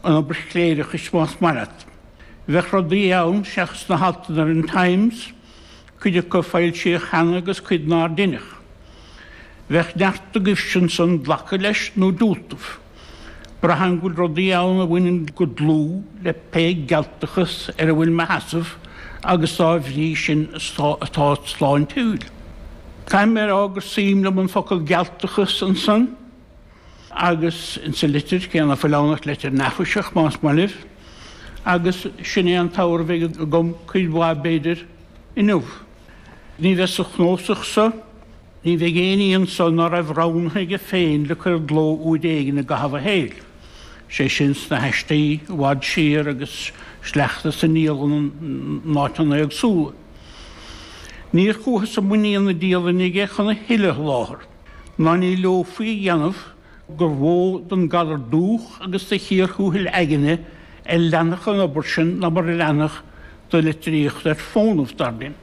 an obair chléireachais más maith leat. Bheadh rudaí ann seachas na haltanna ar an Times, cuid acu foilsíodh cheana agus cuid nár deineadh. Bheadh neart agaibhse ansan glacadh leis nó diúltadh. Braithim go bhfuil rudaí ann a bhaineann go dlúth le pé gealtachas ar a bhfuil mo sheasamh agus dá bhrí sin atá sláintiúil. Caithfidh mé a rá gur suim liom an focal 'gealtachas' ansan. agus insa litir cé ná fuil ann ach litir neafaiseach, más maith libh, agus sin é an t-abhar a bheidh agam, cuid mhaith, b'fhéidir, inniu. Ní bheidh sa chnósach so, ní bheidh éinní anso ná raibh roghnaithe aige féin le cur i gcló uair éigin i gcaitheamh a shaeil, 'sé sin sna haistí i bhfad siar agus sleachta as an ndialann in áiteanna éagsúla. Níor chuathas i muinín na dialainne aige chun a thuilleadh a sholáthar. Ná ní leomhfaí a dhéanamh gur mhó don galar dubhach agus de chíor thuathail aigne a leanfadh an obair sin ná mar a leanfadh do litríocht ar fónamh, dar linn.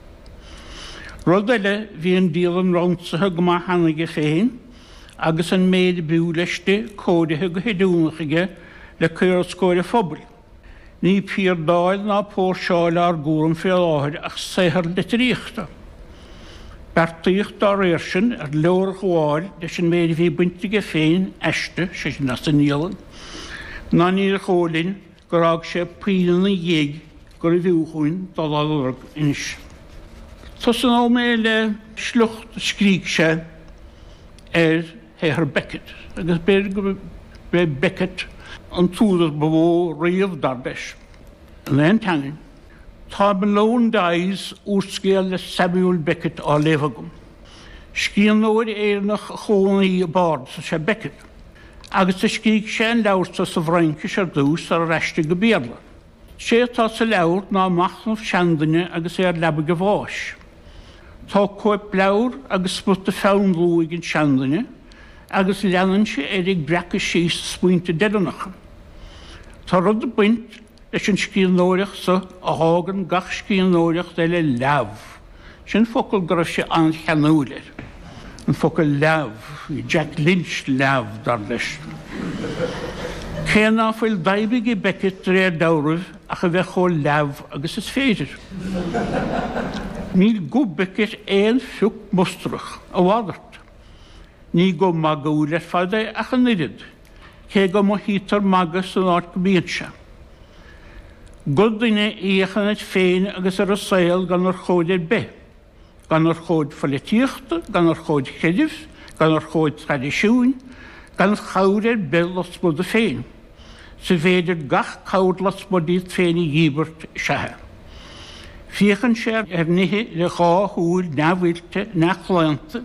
Rud eile, bhí an dialann ransaithe go maith cheana aige féin, agus an méid a b'fhiú leis di cóirithe go hoiriúnach aige le cur os comhair an phobail. Ní piardáil ná póirseáil ár gcúram fé láthair ach saothar litríochta. Beartaíodh dá réir sin ar leorghabháil leis an méid a bhí bainte aige féin aisti, sé sin as an ndialann, ná níor dhó' linn gur fhág sé puinn ina dhiaidh gurbh fhiú dhúinn dul á lorg anois. Tosnóidh mé le sliocht a scrígh sé ar. shaothar Beckett, agus b'fhéidir gurb é Beckett an t-údar ba mhó riamh, dar leis, in aon teanga. Tá Malone Dies, úrscéal le Samuel Beckett, á léamh agam. Scríbhneoir Éireannach a chónaigh i bPáras is ea Beckett, agus do scrígh sé an leabhar seo sa bhFraincis ar dtús, sarar aistrigh go Béarla. Sé atá sa leabhar ná machnamh seanduine agus é ar leabaidh a bháis. Tá cóipleabhar agus smut de pheann luaidh ag an seanduine agus leanann sé air ag breacadh síos a smaointe deireanacha. Tá rud ag baint leis an scríbhneoireacht so a fhágann gach scríbhneoireacht eile leamh. Sin focal go raibh sé an-cheanúil air, an focal leamh, bhí Jack Lynch leamh, dar leis. Cé ná fuil d'aidhm ag Beckett de réir dealraimh ach a bheith chomh leamh agus is féidir. Níl guth Beckett aon phioc mustarach, a mhalairt. Ní guth magúil ar fad é ach an oiread, cé go mothaítear magadh san áit go mbíonn sé. Gur duine ag féachaint air féin agus ar an saol gan urchóid ar bith, gan urchóid pholaitíochta, gan urchóid chreidimh, gan urchóid traidisiúin, gan chabhair ar bith lasmuigh de féin, más féidir gach cabhair lasmuigh díot féin a dhíbirt, is ea é. Féachann sé ar nithe le dhá shúil neamhoilte, neamhchlaonta,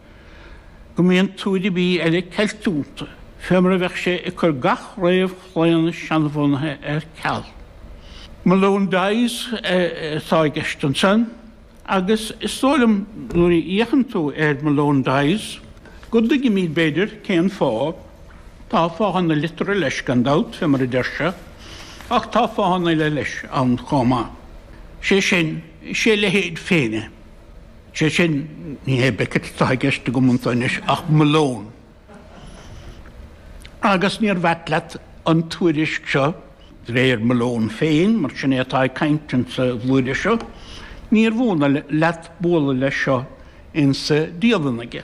go mbíonn tuath ar bith eile ceiltiúnta, fé mar a bheadh sé ag cur gach réamhchlaonadh seanbhunaithe ar ceal. Malone Dies atá i gceist ansan, agus is dóigh liom, nuair a fhéachann tú ar Malone Dies, go dtuigimid, b'fhéidir, cén fáth. Tá fáthanna liteartha leis, gan dabht, fé mar a deir sé, ach tá fáthanna eile leis ann chomh maith. Sé sin, is é a leithéid féin é. Sé sin, ní hé Beckett atá i gceist agam anseo anois ach Malone. Agus níorbh ait leat an tuairisc seo, de réir Malone féin, mar sin é atá ag caint insa bhlúire seo, níorbh ionadh leat bualadh leis seo insa dialann aige.